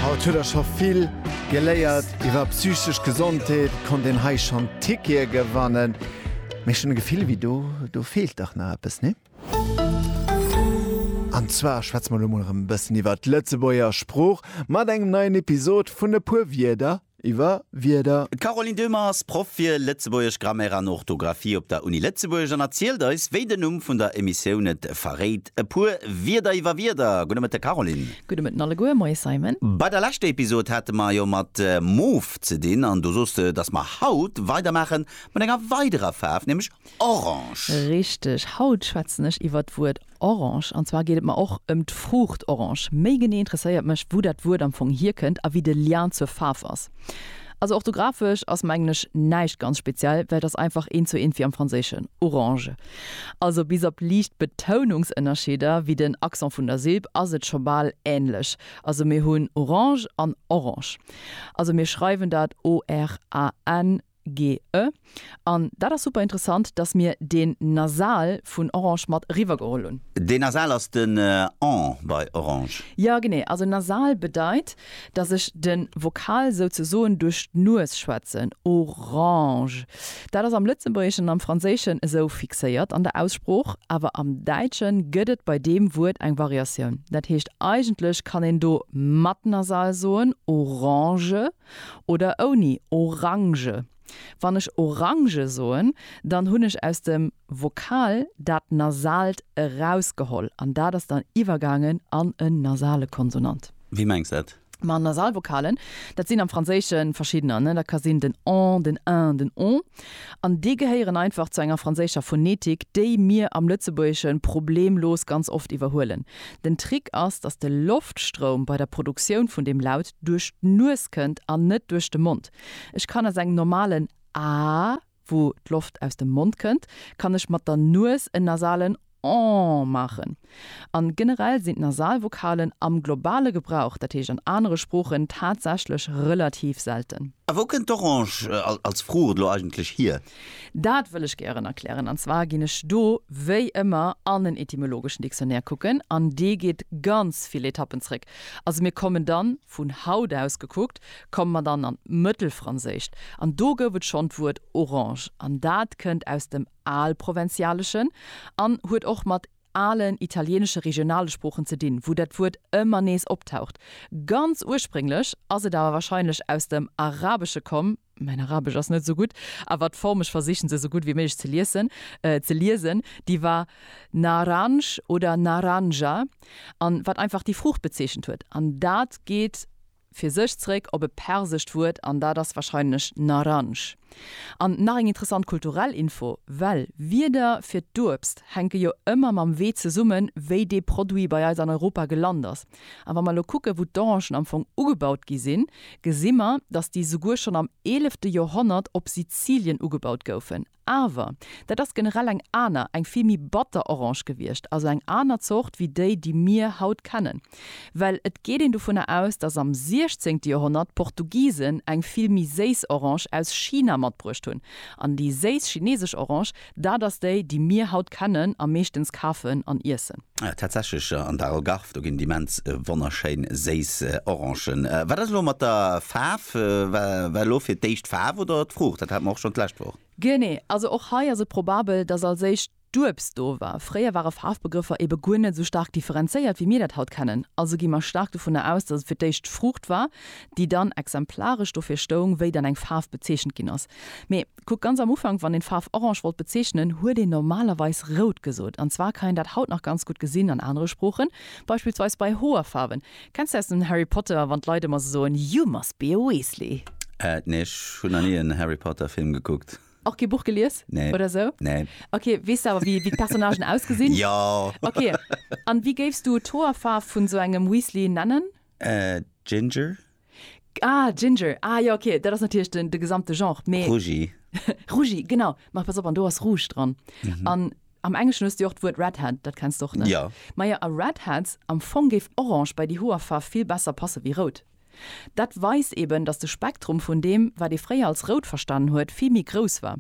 Haut huet der scho vill geléiert iwwer psychesch Gesondheet, konnt een hei schonn Tickete gewannen, mee ech hunn e Gefill wéi do, do feelt dach nach eppes, nee? An zwar schwätze mer elo mol erëm e bëssen iwwer d'Lëtzebuerger Sprooch mat engem neien Episod vun E puer Wierder iwwer Wierder. D'Caroline Döhmer ass Proff fir Lëtzebuergesch, Grammaire an Orthografie op der Uni Lëtzebuerg an erzielt eis, wéi den Numm vun der Emissioun et verréit, e puer Wierder iwwer Wierder. Gudde Mëtten, Caroline. Gudde Mëtten alleguer. Moie, Simon. Bei der leschter Episod hate mer jo mat Mof ze dinn an du sos de, dass mer haut weidermaache mat enger weiderer Faarf, nämlech Orange. Richteg. Haut schwätzen ech iwwer d'Wuert Orange, an zwar geet et mer och ëm d'Fruucht Orange. Méi genee interesséiert mech, wou dat Wuert am Fong hierkënnt a wéi de Lien zur Faarf ass. Also orthografesch ass, mengen ech, näischt ganz speziell, well et ass einfach eent zou eent wéi am Franséischen, orange. Also bis op liicht Betounungsënnerscheeder, wéi den Accent vun der Silb, ass et scho bal änlech. Also mir hunn Orange an Orange. Also mir schreiwen dat ORAN. GE, An dat ass super interessant, dass mir deen Nasal vun Orange mat eriwwer geholl hunn. Deen Nasal ass den en bei Orange. Jo, genee. Also Nasal bedeit, dass ech de Vokal souzesoen duerch d'Nues schwätzen. Orange. Dat ass am Lëtzebuergeschen an am Franséischen esou fixéiert an der Aussprooch, awer am Däitsche gëtt et bei deem Wuert eng Variatioun. Dat heescht eigentlech kann een do mat Nasal soen, Orange. oder ouni Orange. Wann ech Orange soen, dann hunn ech aus dem Vokal dat Nasalt erausgeholl an dat ass dann iwwergaangen an en nasale Konsonant. Wéi mengs de dat? Ma Nasalvokalen, dat sinn am Franséische verschiddener, dat ka sinn den en, den en, den on, an déi gehéieren einfach zu enger franséischer Phonetik, déi mir am Lëtzebuergesche problemlos ganz oft iwwerhuelen. Den Trick ass, dass de Loftstroum bei der Produktioun vun deem Laut, duerch d'Nues kënnt an net duerch de Mond. Ech kann aus engem normalen Aah, wou d'Loft aus dem Mond kënnt, kann ech mat der Nues en nasalen Ohh maachen. An generell sinn d'Nasalvokalen am globale Gebrauch, dat heescht an anere Sproochen, tatsächlech relativ selten. A wou kënnt d'Orange als Fruucht elo eigentlech hier? Dat wëll ech gären erklären. An zwar ginn ech do wéi ëmmer an en etymologeschen Dictionnaire kucken, an dee geet ganz vill Etappen zréck. Also mir kommen dann, vun haut aus gekuckt, komme mer dann an d'Mëttelfranséischt, an do gouf et schonn d'Wuert orange, an dat kënnt aus dem Alprovënzialeschen an huet och mat alen italieenesche regionale Sproochen ze dinn, wou dat Wuert ëmmer nees optaucht. Ganz ursprénglech ass et awer warscheinlech aus dem Arabesche komm. mäin Arabesch ass net esou gutt, awer d'Form, ech versichen se esou gutt wéi méiglech ze liessen, ze liesen, déi war Naranj oder Naranja an wat einfach déi Fruucht bezeechent huet an dat geet fir sech zréck op e persescht Wuert an dat ass wahrscheinlech Naranj. An nach eng interessant kulturell Info, well Wierder fir d'Uebst hänke jo ëmmer mam Wee zesummen, wéi dee Produit bei eis an Europa gelant ass. An wa mer elo kucken, wou d'Orangen am Fong ugebaut gi sinn, gesi mer, dass déi souguer schonn am eelefte Joerhonnert op Sizilien ugebaut goufen. Awer dat ass generell eng aner, eng vill méi batter Orange gewiescht, also eng aner Zort wéi déi, déi mir haut kennen. Well et geet een dovunner aus, dass am siechzéngte Joerhonnert d'Portugisen eng vill méi séiss Orange aus China matbruecht hunn. An déi séiss chineesesch Orange Dat ass déi, déi mir haut kennen a meeschtens kafen an iessen. Tatsächlech, an der Algarve, do ginn et immens wonnerschéin séiss Orangen. Wat ass elo mat der Faarf? War elo fir d'éischt d'Faarf oder d'Fruucht? Dat hate mer och schonn d'lescht Woch. Genee, also och hei ass et probabel, datt als éischt d'Uebst do war. Fréier ware Faarfbegrëffer ebe guer net esou staark differenzéiert, wéi mir dat haut kennen. Also gi mer staark dovunner aus, datt et fir d'éischt d'Fruucht war, déi dann exemplaresch dofir stoung, wéi dann eng Faarf bezeechent ginn ass. Mee. Kuckt, ganz am Ufank, wann een d'Faarf orange wollt bezeechnen, huet een normalerweis rout gesot. An zwar kann een dat haut nach ganz gutt gesinn an anere Sproochen, beispillsweis bei Hoerfaarwen. Kenns de aus dem Harry Potter, wann d'Leit ëmmer esou soen, You must be a Weasley? Äh, nee, ech hunn nach ni en Harry Potter Film gekuckt. Och kee Buch gelies Nee, oder esou? nee. Ok, weess de awer wéi d'Personnagen ausgesinn? Jo! Ok, an wéi géifs du d'Hoerfaarf vun esou engem Weasley nennen? Äh, Ginger? Ah, Ginger, ah jo, ok, dat ass natierlech den, de gesamte Genre, mee. Rougi. Rougi, genau. Ma pass op, an do ass Rouge dran. An am Engleschen hues de jo och d'Wuert Redhead, dat kenns de och, ne? Jo. Majo, a Redheads, am Fong géif Orange bei déi Hoerfaarf vill besser passe wéi Rout. Dat weist eben, datt de Spektrum vun deem, wat ee fréier als Rout verstanen huet, vill méi grouss war.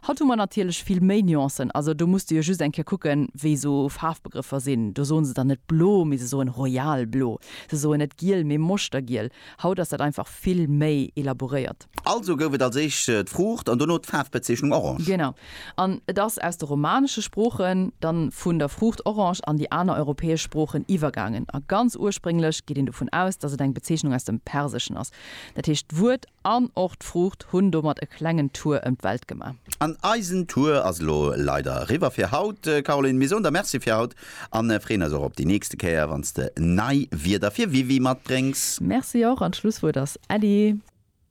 Haut hu mer natierlech vill méi Nuancen. Also do muss de jo just eng Kéier kucken, wéi esou Faarfbegrëffer sinn. Do soen se dann net blo, mee se soen royal blo. Se soen net giel, mee moschtergiel. Haut ass dat einfach vill méi elaboréiert. Also gouf et als éischt d'Fruucht an dono d'Faarfbezeechnung orange. Genau. An et ass aus de romanesche Sproochen dann vun der Fruucht orange an déi aner europäesch Sproochen iwwergaangen. A ganz ursprénglech geet een dovun aus, dass et eng Bezeechnung aus dem Perseschen ass. Dat heescht, d'Wuert An och d'Fruucht hunn domat e klengen Tour ëm d'Welt gemaach. An eisen Tour ass elo leider eriwwer fir haut, Caroline. Mir soen der Merci fir haut a freeën eis och op déi nächste Kéier, wann s de nei Wierder fir WiWi matbréngs. Merci och an d'Schlusswuert ass Äddi.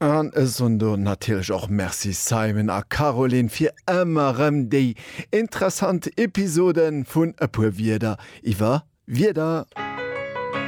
An ech soen do natierlech och Merci Simon a Caroline fir ëmmer erëm déi interessant Episode vun E puer Wierder iwwer Wierder.